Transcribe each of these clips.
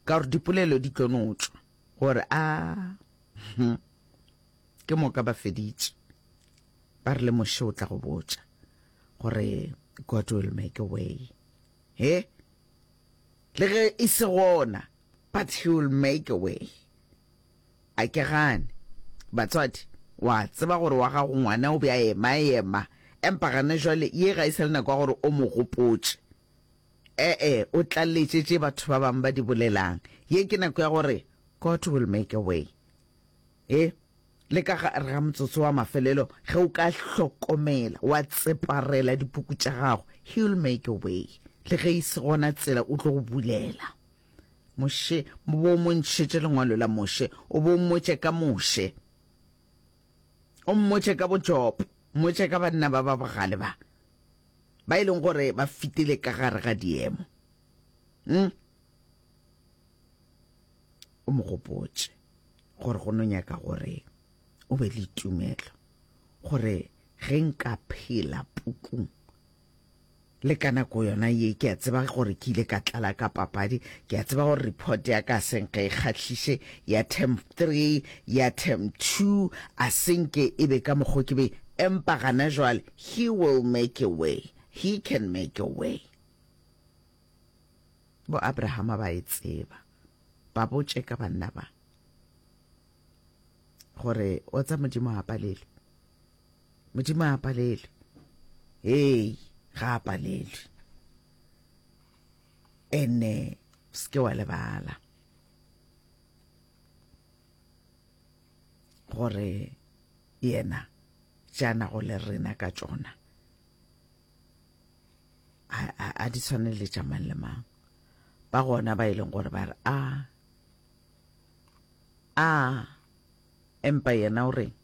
Ka gore dipolelo di tlo no tšwa gore a hm, ke moka ba feditše ba re le moše o tla go botša gore God will make a way he le ge e se gona but he will make a way a ke gane batswadi wa tseba gore wa gago ngwana o be a ema ema empa gane jwale ye ga e sa le nako ya gore o mo gopotše E-e, o tlaletše tše batho ba bangwe ba di bolelang. Ye ke nako ya gore God will make a way. E, le ka gare ga motsotso wa mafelelo, ge o ka hlokomela, wa tseparela dipuku tša gago, He will make a way. Le ge e se gona tsela, o tlo go bulela. Moshe, mo bo mo ntšhetše lengwalo la Moshe, o bo mmotše ka Moshe. O mmotše ka bo Job, mmotše ka banna ba ba bogale ba. ba e leng gore ba fitile ka gare ga diemo mm? o mo gopotse gore go no nyaka gore o be le tumelo gore ge nka phela pukung le ka nako yona ye ke a tseba gore ke ile ka tlala ka papadi ke a tseba gore report ya ka seng ge e kgatlhise ya term three ya term two a senke e be ka mokgo ke be empa gana jwale He will make a way, He can make a way. Bo Abrahama ba e tseba. Ba botše ka banna ba gore o tsa Modimo a palelwe. Modimo a palelwe. Hey, ga a palelwe. Ene ske wa lebala gore Yena tša nago le rena ka tšona a, a, a di tshwane le tša mang le mang ba gona ba e leng gore ba re a a empa yena o reng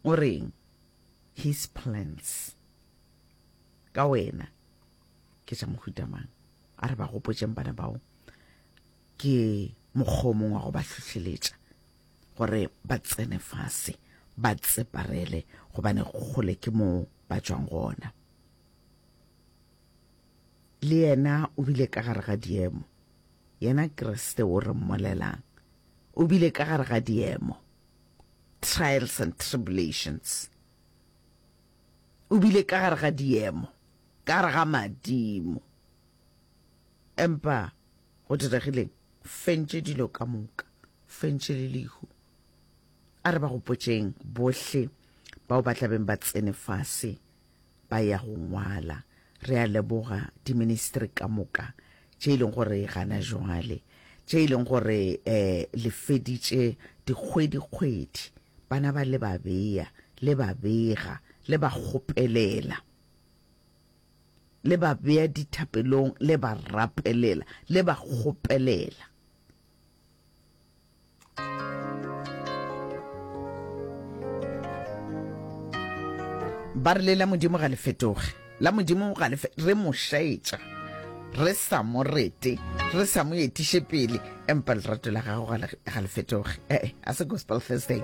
o reng his plans ka wena ke tša mohuta mang a re ba gopotšeng bana bao ke mokgomong wa go ba hlohleletša gore ba tsene fase ba tseparele gobane kgole ke moo ba tšwang gona le yena o bile ka gare ga diemo yena kriste o re mmolelang o bile ka gare ga diemo trials and tribulations o bile ka gare ga diemo ka gare ga madimo empa Go diregileng? Fentše dilo ka moka, fentše le lehu. A re ba gopotšeng bohle bao ba tla beng ba tsene fase ba ya go ngwala. Re a leboga diministri ka moka tše e leng gore gana jwale, tše e leng gore um le feditše dikgwedi-kgwedi bana ba le ba beya, le ba bega, le ba kgopelela. le ba bea dithapelong, le ba rapelela, le ba kgopelela. Ba re le la Modimo ga le fetoge, la Modimo ga le re mo šaetša re sa mo rete re sa mo etiše pele empa lerato la gago ga le fetoge ee a se gospel thursday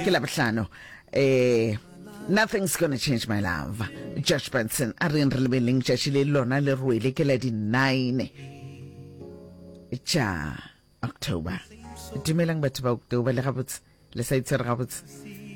ke labohlano um Nothing's gonna change my love. Josh Benson a reng re lebeleng tšatši le lona le rwele ke la di nine tša October. Dumelang batho ba October le gabotse le sa itshwere gabotse.